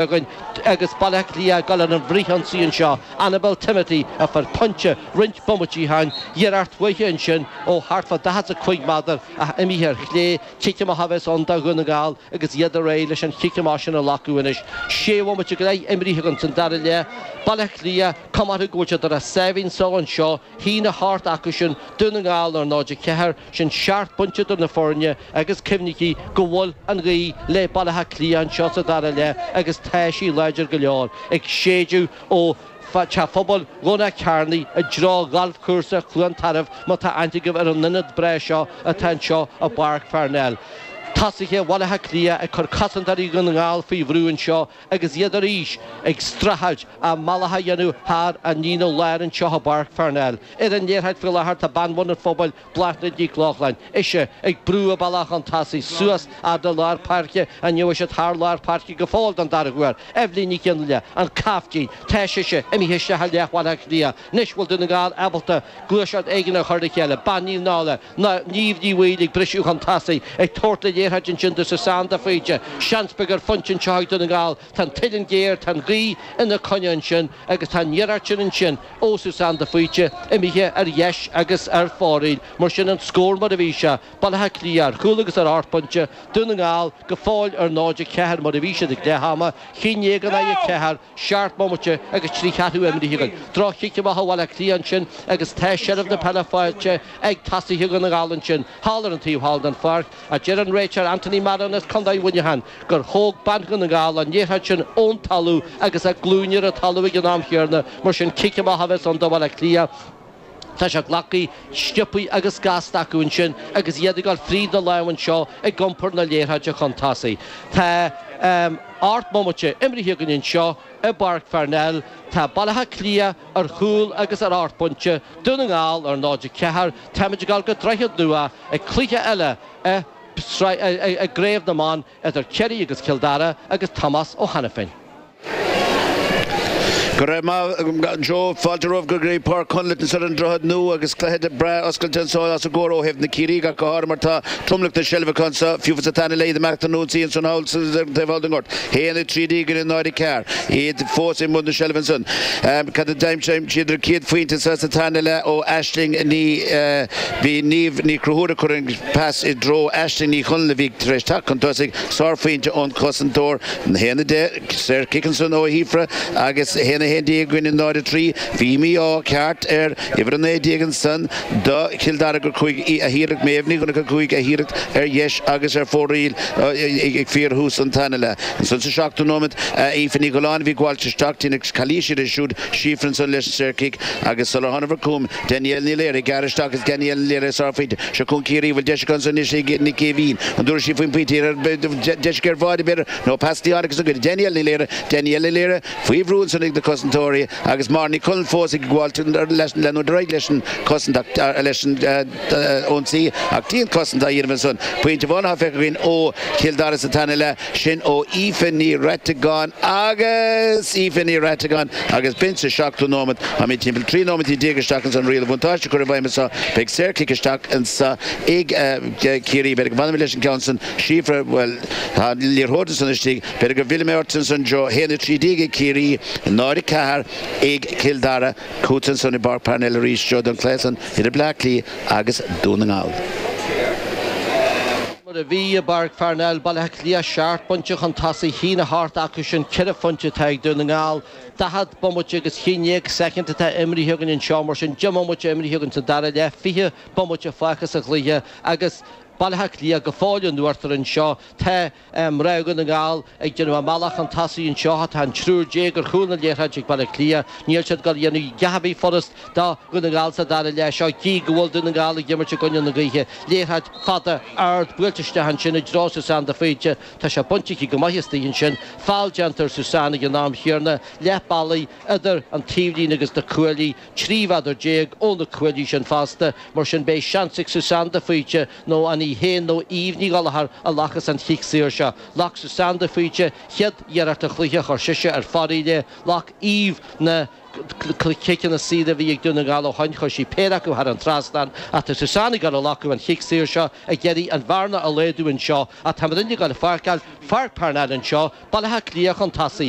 againn agus Baile Átha Cliath ag dul ar an bhfrithionsaí anseo, Annabel Timothy a fuair pointe roinnt bomaití ó shin, iarracht uaithi ansin ó thart fá 45 meadar ach imithe ar chlé, cic amach a bheas ann do Dhún na nGall agus iad réidh leis an chic amach sin a ghlacadh anois. Sé bhomaite go leith imrithe againn san dara leath, Baile Átha Cliath comhartha go bhfuil siad ar a sáimhín só anseo, 1, 8 acusan, Dún na nGall ar 0, 4, Sin seacht bpointe idir na foirne agus cuimhnigí go bhfuil an ghaoth le Baile Átha Cliath anseo sa dara leath agus tá sí láidir go leor, ag séideadh ó Theach Phobail Dhomhnach Cearnaigh i dtreo ghalfchúrsa Chluain Tarbh má tá aithne agaibh ar an ionad breá seo atá anseo i bPáirc Pharnell. Tosaithe Bhaile Átha Cliath ag cur cosantóirí Dhún na nGall faoi bhrú anseo, agus iad arís ag streachailt a mbealach a dhéanamh thar an líne láir anseo i bPáirc Pharnell. Ar an liathróid faoi láthair tá bean Bhun an Phobail, Bláthnaid Nic Lochlainn, ise ag brú a bealach chun tosaigh suas fhad le lár páirce, an mbeidh siad thar lár páirce go fóill don dara huair? Eibhlín Nic Fhionnlaoich, An Caiftín, tá sise imithe isteach i leath Bhaile Átha Cliath anois, bhfuil Dún na nGall ábalta gluaiseacht éigin a chur le chéile? Bean Naomh Náille. ná Niamh Ní Bhaoill ag briseadh chun tosaigh, ag tabhairt an liathróid ansin do Susanne de Faoite. Seans beag ar phointe anseo ag Dún na nGall. Tá an t-uilleann géar, tá an ghaoth ina coinne ansin agus tá an iarracht sin ansin ó Susanne de Faoite imithe ar dheis agus ar fóraoil. Mar sin an scór mar a bhí sé, Baile Átha Cliath ar chúl agus ar ocht bpointe, Dún na nGall go fóill ar 0, 4 mar a bhí siad ag leath ama, 11 in aghaidh 4, Seacht mbomaite agus trí cheathrú imrithe againn. Droch-chic amach ó Bhaile Átha Cliath ansin agus tá seilbh na peile faighte ag tosaithe Dhún na nGall ansin thall ar an taobh thall den pháirc ach deir an réiteoir Anthony Marron as Contae Mhuineacháin gur thóg bean Dhún na nGall an liathróid sin ón talamh agus a glúine ar an talamh ag an am chéanna, mar sin cic amach a bheas ann do Bhaile Átha Cliath. Tá sé glactha, sciobtha agus gasta acu ansin agus iad ag dul fríd na lámha anseo ag iompar na liathróide chun tosaigh. Tá ocht mbomaite imrithe againn anseo i bPáirc Pharnell. Tá Baile Átha Cliath ar chúl agus ar ocht bpointe, Dún na nGall ar 0, 4. Táimid ag dul go Droichead Nua ag cluiche eile i gCraobh na mBan. idir Ciarraí agus Cill Dara agus Tomás Ó hAiniféin. Go raibh maith agat Joe. Fáilte romhaibh go dtí Páirc Chonléith anseo ar an Droichead Nua agus cluiche breá oscailte anseo os ár gcomhair ó thaobh na Ciarraígh ach go háirithe mar tá tromlach na seilbhe acu anseo fiú sa tarna leath imeachta nó insíonn sin thall sa taobh thall den ghort 1, 13 in aghaidh 0, 4, iad fós i mbun na seilbh ansan. Cad a d'aimsigh siad an chéad phointe sa tarna leath ó Aisling Ní Bhí Niamh Ní Chonchúir, a chuir an pas i dtreo Aisling Ní Chonaill a bhí tar éis teacht chun tosaigh, sárphointe ón chosantóir, 1:10, saorchic ansan ó Shíofra agus 1:11 i gcoinne 0:03. Bhí mí-ádh ceart ar uimhir 19 ansan do Chill Dara gur chuaigh a hiarracht Méabh Ní Dhonncha chuaigh a hiarracht ar dheis agus ar fóraoil ag fíorthús an tarna leath. Ansan sa seachtú nóiméad, Aoife Ní Ghalláin a bhí ag gabháilt isteach, deineadh calaois uirthi siúd, Síofra ansan leis an saorchic agus sular thángabhair chugham, Danielle Ní Laoire, ag gearradh isteach agus Danielle Ní Laoire, sárphointe. Seo chugainn Ciarraí an bhfuil deis aici anso anois ag Nic Aoibhín an dtabharfaidh sí faoin bpointe thiar ar deis géar bháire b'fhéidir nó pas dí tháinig as an gcoinne. Danielle Ní Laoire, Danielle Ní Laoire, faoi bhrú ansin ag na cosantóirí agus Máire Ní Chonaill fós ag gabháilt leanúint ar aghaidh leis an cosaint ach leis an ionsaí ach dianchosaint á dhéanamh ansan. Pointe amháin atá feicthe againn ó Chill Dara sa tarna leath. Sin ó Aoife Ní Reiteagáin agus Aoife Ní Reiteagáin agus b'in sa seachtú nóiméad. Táimid timpeall 13 nóiméad isteach ansan. Riail an bhuntáiste á chur i bhfeidhm anseo, beidh saorchic isteach anseo ag Ciarraí. B'fhéidir go bhfanfaimid leis an gceann san Síofra, bhuel tá an liathróid ansan istigh. B'fhéidir go bhfillfidh mé ort ansan Joe. 1:13 ag Ciarraí, 0:04 ag Cill Dara. Chugat ansan i bPáirc Parnell arís Joe don cluiche san idir Bleá Cliath agus Dún na nGall. Mar a bhí i bPáirc Pharnell, Baile Átha Cliath, seacht bpointe chun tosaigh, a haon a hocht acusan ceithre phointe atá ag Dún na nGall. Daichead bomaite agus tríocha soicind atá imríthe againn anseo, mar sin deich mbomaite imríthe againn sa dara leath, fiche bomaite fágtha sa chluiche agus Baile Átha Cliath go fóill in uachtar anseo. Tá mná Dhún na nGall Ag déanamh a mbealach chun tosaigh anseo tá an triúr déag ar chúl na liathróide ag Baile Átha Cliath. Níl siad ag goil a dhéanamh a dhath ar bith furast do Dhún na nGall sa dara leath seo gidh go bhfuil Dún na nGall ag imirt i gcoinne na gaoithe. Liathróid fada, ard, buailte isteach ansin i dtreo Suzanne de Faoite. Tá sé bainte aici go maith astoigh ansin. Feall déanta ar Suzanne ag an am chéarna. Leath bealaigh idir an taobhlíne agus na cuaillí. Trí mhéadar déag ó na cuaillí sin fosta. Mar sin beidh seans ag Suzanne de Faoite nó an í féin nó Eva Ní Ghallchóir a ghlacfas an chic saor seo? Ghlac Suzanne de Faoite céad iarracht an chluiche chuir sise ar fóraoil é, ghlac Eva na ciceanna saora a bhí ag Dún na nGall ó shoin, chuir sí péire acu thar an trasnán, ach tá Suzanne ag goil a ghlacadh an chic saor seo, ag iarraidh an bhearna a laghadú anseo, ach tá muidinne ag goil a fhágáil Pháirc Parnell anseo, Baile Átha Cliath chun tosaigh.